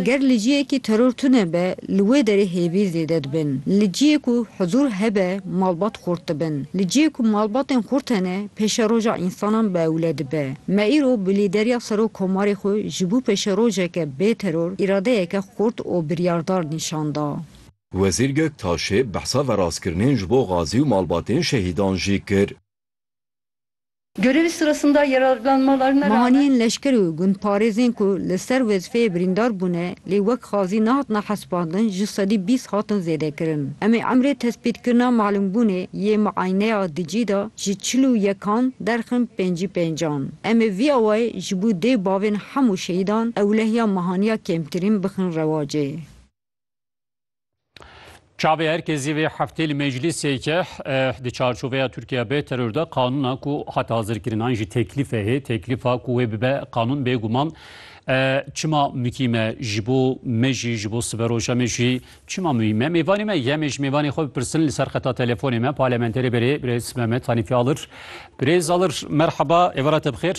Ger li ciyekî teror tune be, li wê derê hêvî zêde dibin. Li ciyê ku huzûr hebe, malbat xurt dibin. Li ciyê ku malbatên xurt hene, pêşeroja însanan bi ewle dibe. Me îro bi lîderiya Serok Komarê xwe ji bo pêşerojeke bê teror îradeyeke xurt û biryardar nîşan da. Wezîr Göktaşê behsa verastkirinên ji bo gazî û malbatên şehîdan jî kir. Mehaniyên leşker û gundparêzên ku li ser wezîfeyê birîndar bûne lê wek xazî nehatine hesibandin ji sedî bîst hatin zêdekirin. Em ê emrê tespîtkirina malûmbûnê yê miayneya dicî de ji çil û yekan derxin pêncî pêncan. Em ê vî awayê ji bo dê bavên hemû şehîdan ewlehiya mehaniya kêmtirîn bixin rewacê. Çavê herkesî vê heftê li meclîsê ke di çarçoveya Tirkiye bê teror de qanûna ku hat hazirkirinan jî teklîfe hê teklîfa ku wê bibe qanûn bêguman çima mukîm e ji bo me jî ji bo siberoja me jî çima muhîm e mêvanê me yemê ji mêvanê xwe bipirsin li ser xeta telefonê me parlamenterê berê birêz Mehmet Hanîfî Alir birêz Alir merheba êvara te bixêr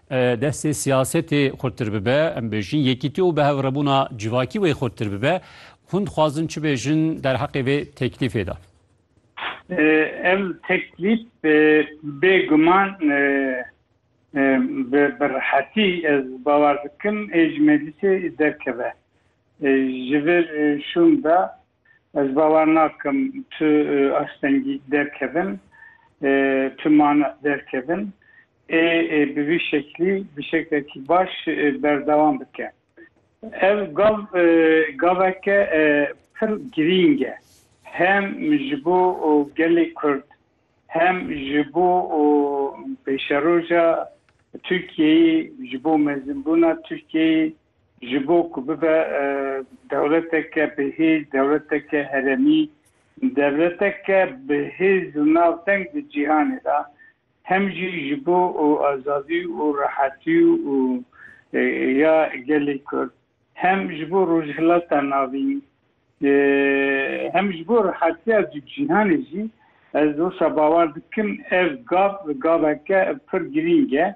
Destê siyasetê xurttir bibe, em bêjin yekîtî û bihevrabûna civakî wê xurttir bibe. Hûn dixwazin çi bêjin derheqê vê teklîfê de? Ev teklîf bêguman bi rehetî ez bawer dikim ê ji meclîsê derkeve. Ji vir şûn de Ez bawer nakim tu astengî derkevin, tu mane derkevin ê bi vî şeklî bi şeklekî baş berdewam bike. Ev gav gaveke pir girîng e hem ji bo gelê Kurd hem ji bo pêşeroja Tirkiyeyê, ji bo mezinbûna Tirkiyeyê Ji bo ku bibe dewleteke bihêz, dewleteke heremî, dewleteke bihêz û navdeng di cîhanê de, hem jî ji bo azadî û rehetî û ya gelê Kurd, hem ji bo Rojhilata Navîn, hem ji bo rehetiya di cîhanê jî, ez wisa bawer dikim ev gav, gaveke pir girîng e.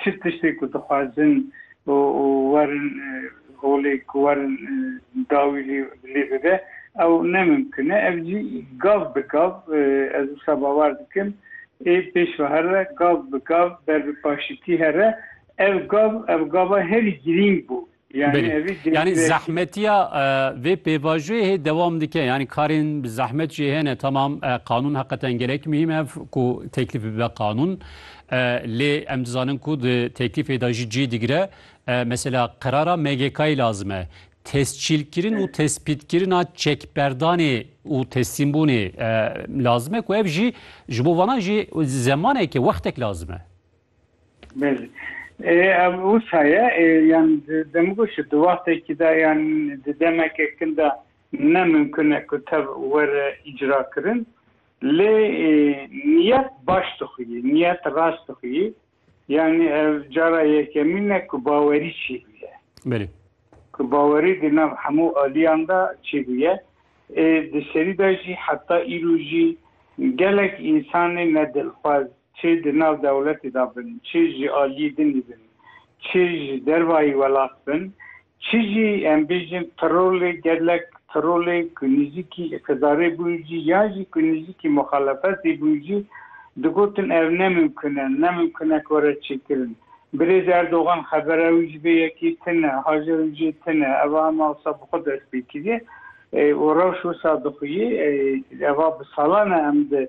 Çi tiştê ku dixwazin û werin holê ku werin dawî lê bibe ew ne mimkin e. Ev jî gav bi gav ez wisa bawer dikim ê pêş ve here, gav bi gav ber bi paşîtî here. Ev gav ev gava herî girîng bû Belê. Yanî zehmetiya vê pêvajoyê hê dewam dike. Yanî karên bi zehmet jî hene tamam qanûn heqeten gelek muhîm e ku teklîf bibe qanûn. Lê em dizanin ku di teklîfê de jî cih digire. Mesela qerara MGK'yê lazim e. Tescîlkirin û tespîtkirina çekberdanê û teslîmbûnê lazim e ku ev jî ji bo vanan jî zemaneke wextek lazim e. Belê. Ev wisa ye yan demgo ji di wextekî de yan di demeke kin de ne mimkun e ku tev were îcrakirin lê niyet baş dixuyî, niyet rast dixuyî yanî ev cara yekemîn e ku bawerî çêbûye. Belê. Ku bawerî di nav hemû aliyan de çêbûye. Di serî de jî heta îro jî gelek însanê ne dilxwaz Çi di nav dewletê de bin, çi ji aliyê dinê bin, çi ji dervayî welat bin, çi jî em bêjin trolê gelek, trolê ku nêzîkî îqtidarê bûn jî yan jî ku nêzîkî muxalefetê bûn jî digotin ev ne mimkun e, ne mimkun e ku were çêkirin. Birêz Erdogan xebera wî ji vê yekê tune, haja wî jê tune. Ev a hema wisa bi xwe dest pê kiriye û rewş wisa dixwîyê. Ev a bi salan e em di